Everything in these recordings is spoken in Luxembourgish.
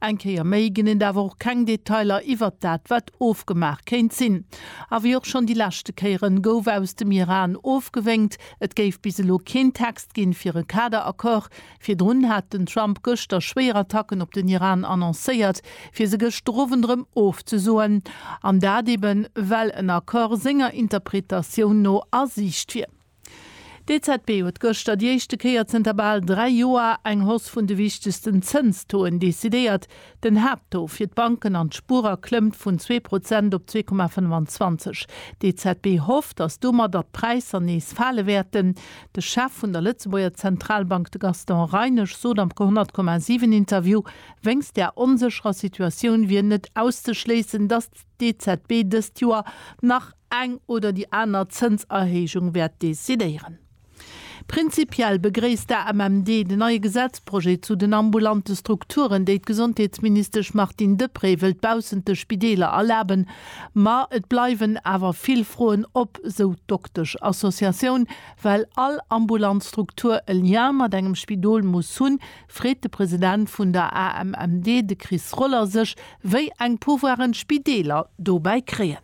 Eng Kéier méi ginn et awer och keng Detailer iwwert dat, wat ofgemaach kéint sinn. A wéi och schonn déi leschte Kéieren, gouf aus dem Iran ofgewénkt, et géif bis elo keen Text ginn, fir e Kader-Accord. Virdrun hat den Trump gëschter schwéier Attacken op den Iran annoncéiert, fir se gëschter Owend erëm ofzesoen. An dat eeben, well en Accord senger Interpretatioun no a Siicht wier. D'EZB huet gëschter déi éischte Kéier zënter bal dräi Joer eng Hausse vun de wichtegsten Zënstoen decidéiert. Den Haapttaux fir d'Banken an d'Spuerer klëmmt vun zwee Prozent op zwee Komma 25. D'EZB hofft, datt domadder d'Präisser nees fale wäerten. De Chef vun der Lëtzebuerger Zentralbank, de Gaston Reinesch, sot am ke 100 Komma 7 Interview, wéinst der onsécherer Situatioun wier net auszeschléissen, datt d'EZB dëst Joer nach eng oder déi aner Zënserhéijung wäert decidéieren. Prinzipiell begréisst d'AMMD den neie Gesetzprojet zu den ambulante Strukturen, déi d'Gesondheetsministesch Martine Deprez wëllt baussent de Spideeler erlaben. Ma et bleiwen awer vill Froen op, sou d'Doktesch-Associatioun, well all ambulant Struktur e Lien mat engem Spidol muss hunn, freet de President vun der AMMD, de Chris Roller, sech, wéi eng Pouvoiren d'Spideeler dobäi kréien.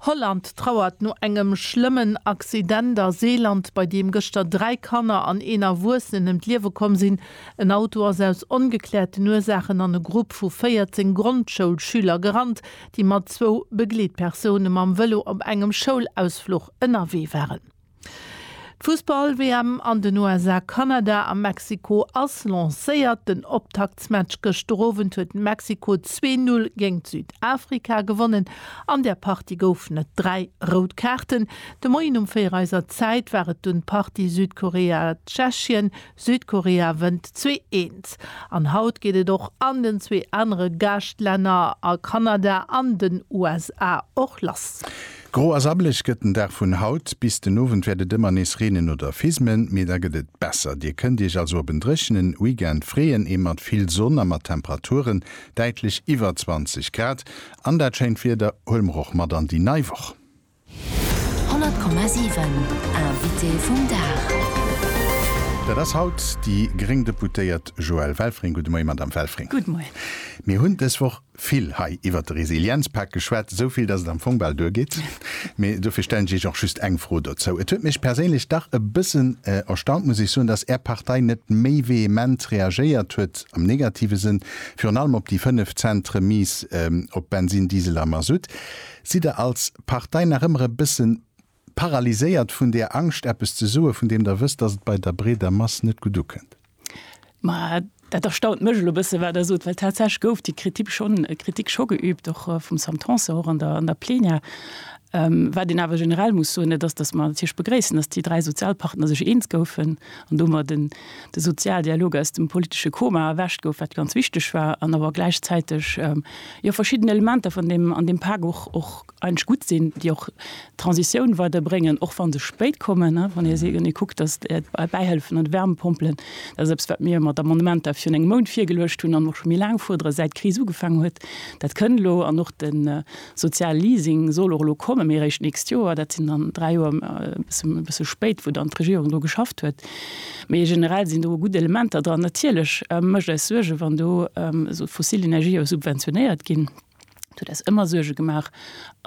Holland trauert no engem schlëmmen Accident a Seeland, bei deem gëschter dräi Kanner an een Erwuessenen ëm d'Liewe komm sinn. En Auto ass aus ongekläerten Ursaachen an e Grupp vu 14 Grondschoulschüler gerannt, déi mat zwou Begleetpersoune mam Vëlo op engem Schoulausfluch ënnerwee waren. D'Fussball-WM an den USA, Kanada a Mexiko ass lancéiert. Den Optaktsmatch gëschter Owend huet Mexiko zwee Null géingt Südafrika gewonnen. An der Partie goufen et dräi rout Kaarten. De Moien um véier eiser Zäit war et dunn d'Partie Südkorea-Tschechien, Südkorea wënnt zwee eent. An haut geet et och an den zwee anere Gaaschtlänner, a Kanada an den USA, och lass. Gro a sabbelech gëtt den Dag vun haut. Bis den Owend wäert et ëmmer nees reenen oder fismen, mee da gëtt et besser. Dir kënnt Iech also op en dréchenen Weekend freeën, ee mat vill Sonn a mat Temperaturen däitlech iwwer 20 Grad. An dat schéint Wieder huele mer och mat an déi nei Woch. 100,7 Invité vum Dag. Dat ass haut déi gréng Deputéiert Joëlle Welfring. Gudde Moie, Madamm Welfring. Gudde Moie. Mir hunn dës Woch vill hei iwwert de Resilienzpak geschwat, esou vill, datt et am Fong bal duergeet. Mee dofir stellen ech Iech och just eng Fro dozou. Et huet mech perséinlech dach e bëssen erstaunt, muss ech soen, datt Är Partei net méi vehement reagéiert huet, am negative Sënn, virun allem op déi 5 Cent Remise op Bensin, Diesel a Mazout. Sidd Der als Partei nach ëmmer e bësse paralyséiert vun där Angscht, eppes ze soe vun deem Der wësst, datt et bei der breeder Mass net gutt ukënnt? Ma dat erstaunt mech elo e bësse wat Der sot, well tatsächlech gouf déi Kritik schonn, Kritik scho geübt, och vum Sam Tanson, och an der, an der Plenière. Wat een awer generell muss soen, dat ass, datt mer natierlech begréissen, datt déi dräi Sozialpartner sech eens goufen an domat en, de Sozialdialog aus dem politesche Koma erwächt gouf, wat ganz wichteg war, an awer gläichzäiteg jo verschidden Elementer vun deem an deem Pak och och eigentlech gutt sinn, déi och d'Transitioun weiderbréngen, och wa se spéit kommen. Wann ee se, wann ee kuckt, datt d'Bäihëllefen an d'Wärmepompelen, dat ass eppes, wat mir mat Amendementer virun engem Mount virgeluecht hunn an och scho méi laang fuerderen, säit d'Kris ugefaangen huet, dat kënn elo, an och de, Sozial Leasing soll och elo kommen, mee eréischt d'nächst Joer. Dat sinn dann dräi Joer, e bëssen, e bësse spéit, wou dann d'Regierung dru geschafft huet. Mee generell sinn do e gutt Elementer dran. Natierlech mécht eis Suerge wann do esou fossil Energië subventionéiert ginn. Dat huet eis ëmmer Suerge gemaach.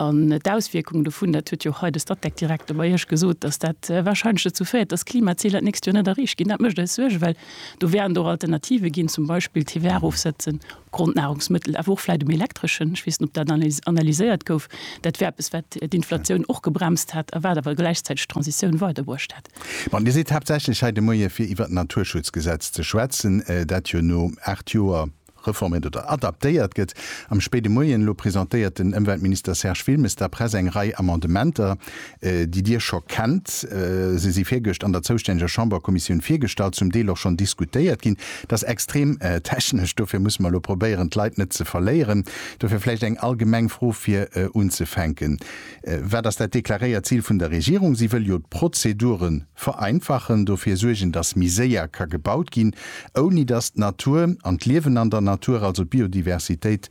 An d'Auswierkung dovun, dat huet jo och hei de Statec-Direkter bei Iech gesot, dass dat warscheinlech dozou féiert, dass d'Klimaziler d'nächst Joer net erreecht ginn. Dat mécht eis Suerge, well do wären et och Alternative ginn, zum Beispill TVA erofsetzen. Grondnahrungsmittel, awer och vläit um Elektreschen, ech weess net, ob dat analyséiert gouf, dat wär eppes, wat d'Inflatioun och gebremst hätt a wat awer gläichzäiteg d'Transitioun weiderbruecht hätt. Bon, Dir sidd haaptsächlech hei de Moie fir iwwert d'Naturschutzgesetz ze schwätzen, dat jo no aacht Joer reforméiert oder adaptéiert gëtt. Am spéide Moien elo presentéiert den Ëmweltminister Serge Wilmes der Press eng Rei Amendementer, déi Dir scho kennt. Se si virgëscht an der zoustänneger Chamberkommissioun virgestallt, zum Deel och schonn diskutéiert ginn. Et ass extrem technesch, dofir musse mer elo probéieren, d'Leit net ze verléieren. Dofir vläicht eng allgemeng Fro fir unzefänken, Wat ass dat deklaréiert Zil vun der Regierung? Si wëll jo d'Prozedure vereinfachen, dofir suergen, dass méi séier ka gebaut ginn, ouni dass d'Natur an d'Liewen an der Natur, also d'Biodiversitéit,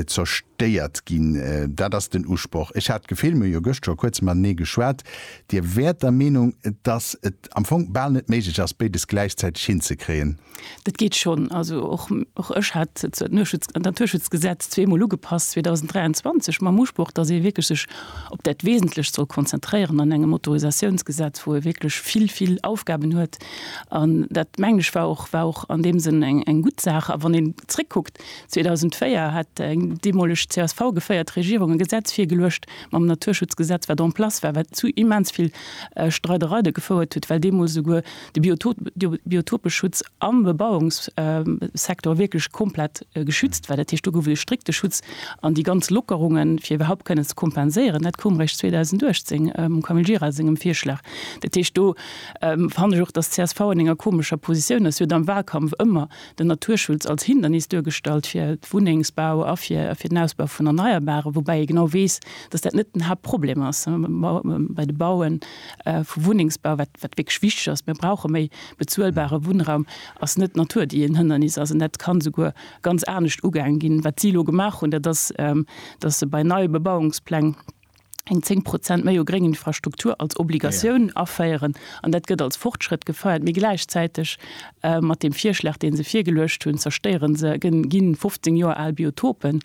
zerstéiert ginn. Dat ass den Usproch. Ech hat d'Gefill, mir hu jo gëscht scho kuerz matenee geschwat, Dir wäert der Meenung, dass et am Fong bal net méiglech ass, béides gläichzäiteg hinzekréien. Dat geet schonn. Also och ech hat zwar d'Naturschutzgesetz zweemol ugepasst, 2023, mam Usproch, dass ee wierklech sech op dat Wesentlecht soll konzentréieren an engem Autorisatiounsgesetz, wou ee wierklech vill, vill Aufgaben huet. An dat, mengen ech, war och an deem Sënn eng gutt Saach. A wann een zréckkuckt, 2004 hat eng deemoleg csv geféiert Regierung e Gesetz virgeluecht mam Naturschutzgesetz, wat en place war, wat zu immens vill Streidereide gefouert huet, well deemools esouguer de Biotopeschutz am Bebauungssektor wierklech komplett geschützt war. Dat heescht, do gouf et e strikte Schutz an déi ganz Lockerungen, fir iwwerhaupt kënnen ze kompenséieren, dat koum eréischt 2018 mam Camille Gira sengem Virschlag. Dat heescht, do fannen ech och, dass csv an enger komescher Positioun ass. Si huet am Wahlkampf ëmmer, den Naturschutz als Hindernis duergestallt fir Wunnengsbau a fir den Ausbau vun Erneierbaren, woubäi ee genau weess, datt dat net den Haaptproblem ass bei de Baue vu Wunnengsbau. Wat wierklech wichteg ass, mir brauche méi bezuelbare Wunnraum, ass net d'Natur, déi en Hënnernis ass. An dat ka souguer ganz anescht ugaange ginn. Wat si elo gemaach hunn, dat ass, datt se bei neie Bebauungspläng, eng 10 Prozent méi u gréngen Infrastruktur als Obligatioun aféieren. An dat gëtt als Fortschrëtt gefeiert. Mee gläichzäiteg mat deem Virschlag, dee se virgeluecht hunn, zerstéiere se, ginn 15 Joer al Biotopen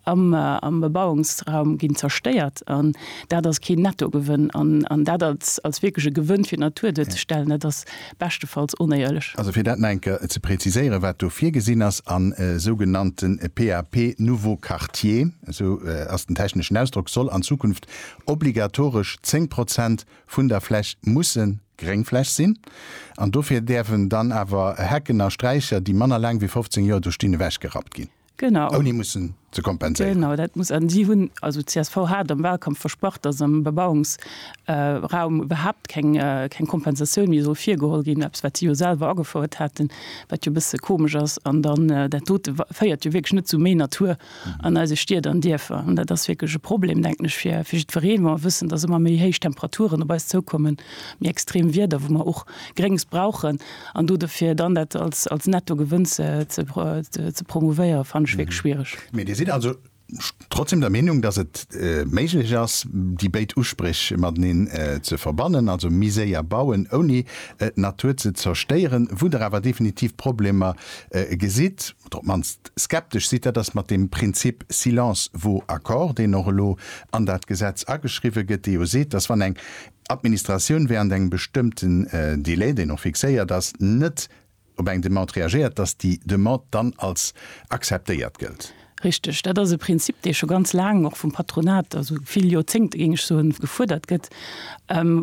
am Bebauungsraum ginn zerstéiert. An dat ass keen Nettogewënn. An dat als wierkleche Gewënn fir d'Natur duerzestellen, dat ass beschtefalls onéierlech. Also fir dat nach eng Kéier ze präziséieren, wat do virgesinn ass a sougenannte PAP nouveaux quartiers, esou ass den techneschen Ausdrock, soll an Zukunft obligatoresch 10 Prozent vun der Fläch musse Gréngfläch sinn an dofir däerfen dann awer Hecken a Straicher, déi manner laang wéi 15 Joer do stinn, ewechgerappt ginn. Genau. Ouni mussen ze kompenséieren. Genau, dat muss, an si hunn, also d'CSV hat am Wahlkampf versprach, dass am Bebauungsraum iwwerhaupt keng Kompensatioun méi soll virgeholl ginn, eppes wat si jo selwer agefouert haten, wat jo e bësse komesch ass. An dann, dat dote féiert jo wierklech net zu méi Natur an eise Stied an Dierfer. An dat ass wierklech e Problem, denken ech, fir jiddwereen, wa mer wëssen, dass ëmmer méi héich Temperaturen op eis zoukommen, méi extrem Wieder, wou mer och Gréngs brauchen, An do dofir dann dat als, als Nettogewënn ze, ze, ze promouvéiere fannen ech wierklech schwierig. Mee Dir sidd also trotzdem der Meenung, dass et méiglech ass, déi béid Uspréch mateneen ze verbannen, also méi séier bauen, ouni d'Natur ze zerstéieren, wou Der awer definitiv Problemer gesitt oder op d'mannst skeptesch sidd, dat ass mat deem Prinzip silence vaut accord, deen och elo an dat Gesetz ageschriwwen gëtt, dee jo seet, dass wann eng Administratioun während engem bestëmmten Delai, deen och fixéiert ass, net op eng Demande reagéiert, dass déi Demande dann als akzeptéiert gëllt. Richtig, dat ass e Prinzip, dee scho ganz laang och vum Patronat, also vill Joerzéngte géing ech soen, gefuerdert gëtt,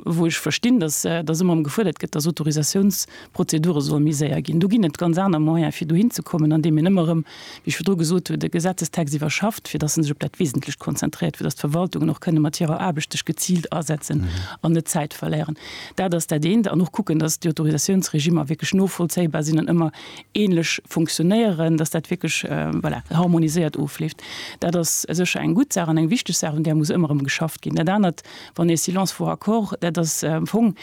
wou ech verstinn, dass dass ëmmer erëm gefuerdert gëtt, dass Autorisatiounsprozedure solle méi séier ginn. Do ginn et ganz aner Moyene fir dohinzekommen, andeem een ëmmer erëm wéi ech virdru gesot hunn, de Gesetzestext iwwerschafft, fir datt en sech op dat Wesentlecht konzentréiert, fir datt d'Verwaltungen och kënne mat hirer Aarbecht sech geziilt asetzen an net Zäit verléieren. Dat ass dat eent. An och kucken, datt déi Autorisatiounsregimer wierklech novollzéibar sinn an ëmmer änlech funktionéieren, datt dat wierklech, voilà, harmoniséiert ofleeft. Dat ass sécher eng gutt Saach an eng wichteg Saach, un där muss ëmmer erëm geschafft ginn. Dat anert, Wann ee Silence vaut accord, dat ass am Fong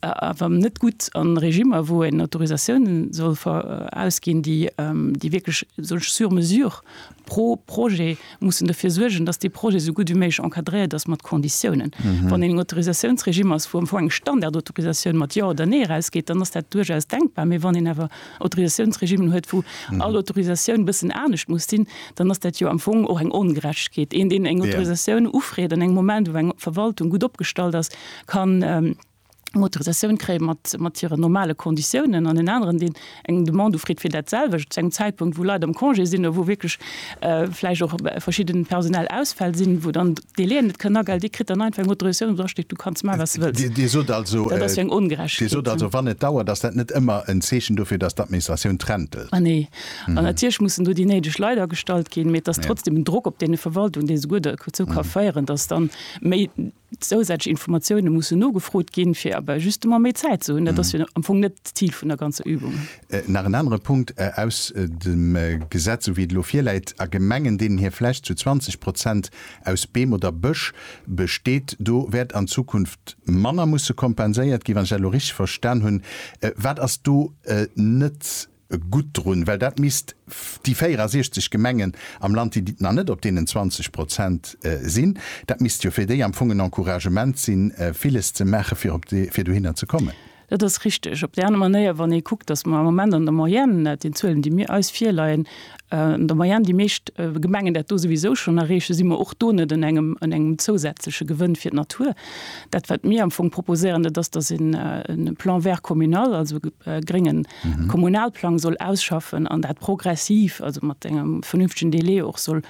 awer net gutt a Regimmer, wou een Autorisatiounen soll verausginn, déi wierklech sou sur mesure pro Projet mussen dofir suergen, datt dee Projet sou gutt wéi méiglech encadréiert ass mat Conditiounen. Wann een en Autorisatiounsregime ass, wou am Fong eng Standardautorisatioun mat Jo oder Nee erausgeet, dann ass dat duerchaus denkbar. Mee wann een awer Autorisatiounsregimen huet, wou all Autorisatioun e bëssen anescht muss sinn, dann ass dat jo am Fong och eng Ongerechtegkeet. Een, deen eng Autorisatioun ufreet an engem Moment, wou eng Verwaltung gutt opgestallt ass, kann eng Autorisatioun kréie mat hiren normale Konditiounen an en aneren, deen eng Demande ufreet fir dat selwecht, zu engem Zäitpunkt, wou Leit am Congé sinn oder wou wierklech vläicht och verschidde personell Ausfäll sinn, wou dann Dee leeën net kënn agel, dee kritt dann einfach eng Autorisatioun, wou drasteet, du kanns maachen, wat s de wëlls. Dir sot also, Dat ass jo eng Dir sot also, Ongerechtegkeet. wann et dauert, ass dat net ëmmer en Zeechen dofir, dass d'Administratioun träntelt? Nee. An natierlech mussen do déi néideg Leit agestallt ginn, mee et ass trotzdem en Drock op deene Verwaltungen, dee souguer derzou ka féieren, dass dann méi zousätzlech Informatioune mussen nogefrot ginn, fir awer justement méi Zäit ze hunn. Dat ass jo am Fong net d'Zil vun der ganzer Übung. Nach en anere Punkt aus dem Gesetz, sou wéi et elo virläit, A Gemengen, deenen hir Fläch zu 20 Prozent aus Beem oder Bësch besteet, do wäert an Zukunft manner musse kompenséiert ginn, wann ech dat elo richteg verstan hunn. Wat ass do net gutt drun? Well dat misst déi 64 Gemengen am Land, déi nach net op deenen 20 Prozent sinn, dat misst jo fir déi am Fong en Encouragement sinn, villes ze maachen, fir dohinner ze kommen. Dat ass richteg. Op déi aner Manéier, wann ee kuckt, datt mer am Moment an der Moyenne, laut den Zuelen, déi mir eis virleien, an der Moyenne déi meescht Gemengen dat do souwisou schonn erreechen, si mer och do net un engem zousätzleche Gewënn fir d'Natur. Dat, wat mir am Fong proposéieren, dat ass, datt een e Plan vert communal, also e grénge Kommunalplang soll ausschaffen an dat progressiv, also mat engem vernünftegen Delai och soll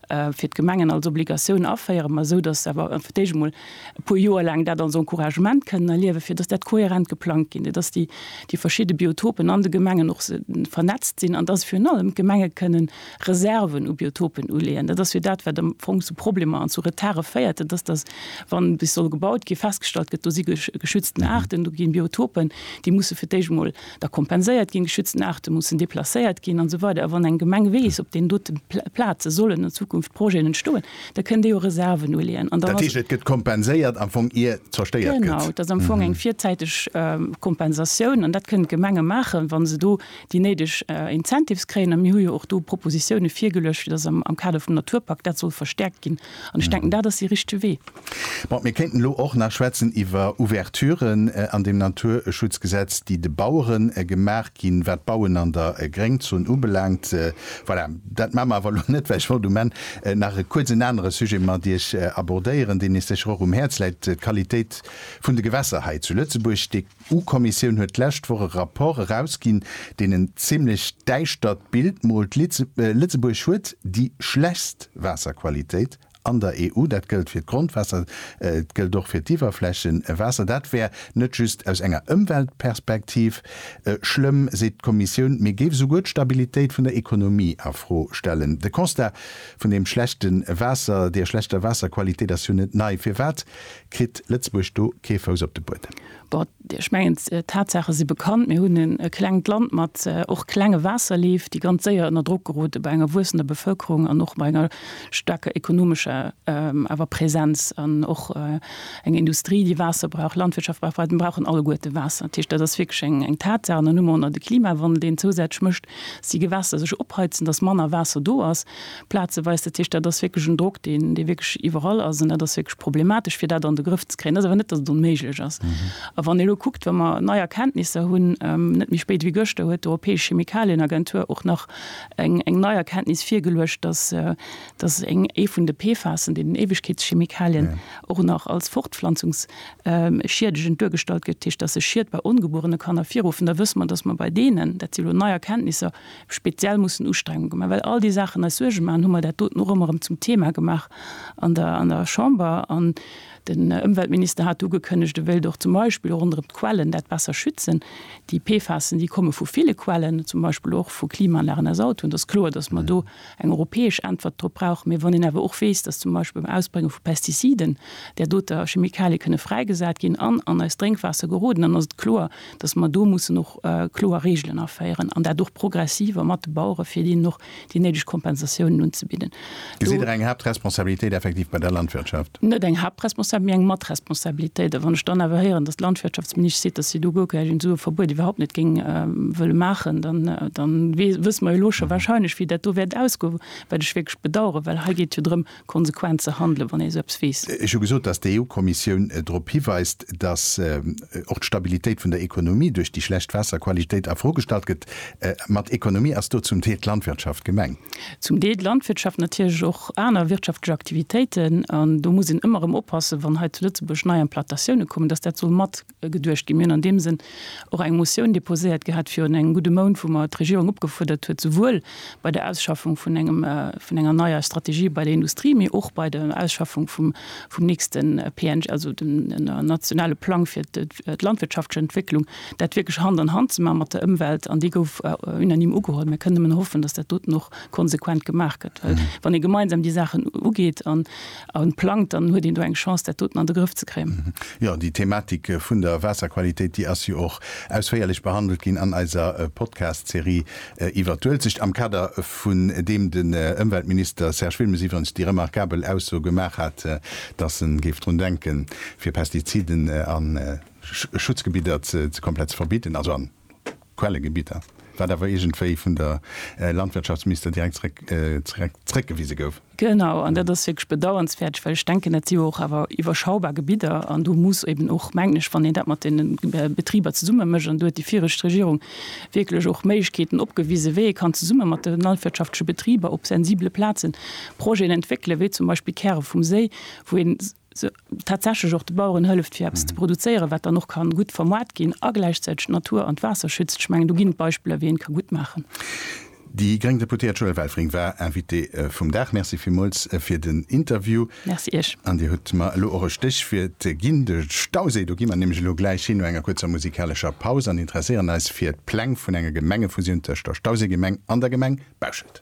fir d'Gemengen als Obligatioun aféieren, ma esou datt se awer fir d'éischt emol e puer Joer laang dat als Encouragement kënnen erliewen, fir datt dat kohärent geplangt ginn, fir datt déi déi verschidde Biotopen an de Gemengen och se vernetzt sinn an datt virun allem d'Gemenge kënnen Reserven u Biotopen uleeën. Dat ass jo dat, wat am Fong zu Problemer an zu Retarde féiert. Dat ass, datt, wann bis soll gebaut ginn, festgestallt gëtt, do si geschützten Aarten, do ginn Biotopen, déi musse fir d'éischt emol da kompenséiert ginn, geschützten Aarte mussen deplacéiert ginn an esou weider. A wann eng Gemeng weess, op deenen dote Plaze sollen an Zukunft Projeten entstoen, da kënn déi och Reserven uleeën. Dat heescht, et gëtt kompenséiert am Fong, ier zerstéiert gëtt? Genau, et ass am Fong eng virzäiteg Kompensatioun an dat kënnen d'Gemenge maachen, wa se do déi néideg Incentives kréien. A mir hu jo och do Propositioune virgeluecht, fir dass am Kader vum Naturpak dat soll verstäerkt ginn, An ech denken, dat ass dee richtege Wee. Bon, mir kéinten elo och nach schwätzen iwwer Ouverturen an deem Naturschutzgesetz, déi de Bauere gemaach ginn, wat d'Bauen an der Gréngzon ubelaangt. Voilà, dat maache mer awer elo net, well ech wollt um Enn nach e kuerz en anere Sujet mat Iech abordéieren, deen Iech sécher och um Häerz läit, d'Qualitéit vun de Gewässer hei zu Lëtzebuerg. D'EU-Kommissioun huet d'lescht Woch e Rapport erausginn, deen en zimmlech däischtert Bild moolt. Lëtzebuerg huet déi schlechtst Waasserqualitéit an der EU. Dat gëllt fir d'Grondwaasser, et gëllt och fir d'Iwwerflächewaasser. Dat wär net just aus enger Ëmweltperspektiv schlëmm, seet d'Kommissioun, mee géif esouguer d'Stabilitéit vun der Ekonomie a Fro stellen. De Constat vun deem schlechte Waasser, der schlechter Waasserqualitéit ass jo net nei. Firwat Kritt Lëtzebuerg do kee Fouss op de Buedem? Bon, ech mengen, d'Tatsaache si bekannt. Mir hunn e klengt Land mat och klenge Waasserleef, déi ganz séier ënner Drock gerote bei enger wuessender Bevëlkerung an och bei enger staarker ekonomescher awer Präsenz an och eng Industrie, déi Waasser brauch, Landwirtschaft brauch, brauchen alleguerte Waasser. Dat heescht, dat ass wierklech eng Tatsaach. An dann hu mer och nach de Klimawandel, deen zousätzlech mécht, Si Gewässer sech opheizen, dass manner Waasser do ass, plazeweis. Dat heescht, dat ass wierklech en Drock, deen, dee wierklech iwwerall ass. An dat ass wierklech problematesch, fir dat an de Grëff ze kréien. Dat ass awer net, dass et onméiglech ass. A wann ee elo kuckt, wa mer nei Erkenntnisser hunn, net méi spéit wéi gëschter huet d'Europäesch Chemikalienagentur och nach eng, eng nei Erkenntnis virgeluecht, dass, dass eng, ee vun de PFASen, deenen Éiwegkeetschemikalien, och nach als Fortpflanzungs. schiedegend duergestallt gëtt, dat heescht, dass e Schied bei ongebuerene Kanner virrufen, da wësse mer, dass mer bei deenen, dat si lo nei Erkenntnisser, speziell mussen Ustrengunge gemaach, well all déi Saachen eis Suerge maachen, hu mer dat doten och ëmmer erëm zum Thema gemaach an der an der Chamber. An den Ëmweltminister hat ugekënnegt, e wéilt och zum Beispill ronderëm d'Quellen dat besser schützen. Déi PFASen, déi komme vu ville Quellen, zum Beispill och vu Klimaanlagen aus Autoen. Et ass kloer, dass mer do eng europäesch Äntwert drop brauch mir, wann een awer och weess, dass zum Beispill beim Ausbrénge vu Pestiziden där doter Chemikalië kënne fräigesat ginn an an eist Drénkwaasser geroden, dann ass et kloer, dass mer do mussen och kloer Regeln aféieren an dat och progressiv a mat de Bauere fir deenen och déi néideg Kompensatiounen unzebidden. Do. Gesitt Der eng Haaptresponsabilitéit effektiv bei der Landwirtschaft? net eng Haaptresponsabilitéit, mee eng Matresponsabilitéit. A wann ech dann awer héieren, datt d'Landwirtschaftsministesch seet, datt si do guer keng esou e Verbuet iwwerhaupt net géing wëlle maachen, dann, dann wësse mer jo elo scho wahrscheinlech, wéi dat do wäert ausgoen, wat ech wierklech bedauern, well hei geet jo drëm, konsequent ze handelen, wann ee esou eppes weess. Ech hu gesot, datt d'EU-Kommissioun drop hiweist, datt och d'Stabilitéit vun der Ekonomie duerch déi schlecht Waasserqualitéit a Fro gestallt gëtt. Mat Ekonomie ass do zum Deel d'Landwirtschaft gemengt. Zum Deel d'Landwirtschaft, natierlech och aner wirtschaftlech Aktivitéiten. An do muss een ëmmer erëm oppassen, wann hei zu Lëtzebuerg nei Implatatiounen kommen, dass dat soll mat geduecht ginn. Mir hunn an deem Sënn och eng Motioun deposéiert gehat virun engem gudde Mount, wou mer d'Regierung opgefuerdert huet, souwuel bei der Ausschaffung vun engem, vun enger neier Strategie bei der Industrie, mee och bei der Ausschaffung vum, vum nächste PNG, also dem nationale Plang fir d'landwirtschaftleche Entwécklung, dat wierklech Hand an Hand ze maachen mat der Ëmwelt, an déi gouf unanime ugeholl. Mir kënnen nëmmen hoffen, datt dat doten och konsequent gemaach gëtt, well wann ee gemeinsam déi Saachen ugeet an plangt, dann huet een do eng Chance, dat doten an de Grëff ze kréien. Jo, déi Thematik vun der Waasserqualitéit, déi ass jo och ausféierlech behandelt ginn an eiser Podcast-Serie iwwert d'Uelzecht, am Kader vun deem den Ëmweltminister Serge Wilmes iwwerens déi remarkabel Ausso gemaach hat, datt en géif drun denken, fir Pestiziden an. Schutzgebidder ze komplett ze verbidden, also an Quellegebidder, wat awer iergendwéi vun der Landwirtschaftsminister direkt zréck zréckgewise gouf. Genau, an dat ass wierklech bedauernswäerteg, well ech denken, dat si jo och awer iwwerschaubar Gebidder an do muss eben och, mengen ech, wann een dat mat deene Betriber zesumme mécht, an do huet déi viregt Regierung wierklech och Méiglechkeeten opgewise wéi ee kann zesumme mat de landwirtschaftleche Betriber op sensibele Plazen Projeten entwéckelen, wéi zum Beispill Käre vum Séi, wou een, tatsächlech och de Baueren hëlleft fir eppes ze produzéieren, wat dann och ka gutt vermoart ginn a gläichzäiteg d'Natur an d'Waasser schützt. Ech mengen do ginn et Beispiller wéi een et ka gutt maachen. Déi gréng Deputéiert Joëlle Welfring war Invitée vum Dag. Merci villmools fir den Interview. Merci Iech. An Dir hutt mer elo och e Stéchwiert ginn, de Stauséi. Do gi mer nämlech elo gläich hin no enger kuerzer musikalescher Paus an interesséieren eis fir d'Pläng vun enger Gemengefusioun tëscht der Stauséigemeng an der Gemeng Bauschelt.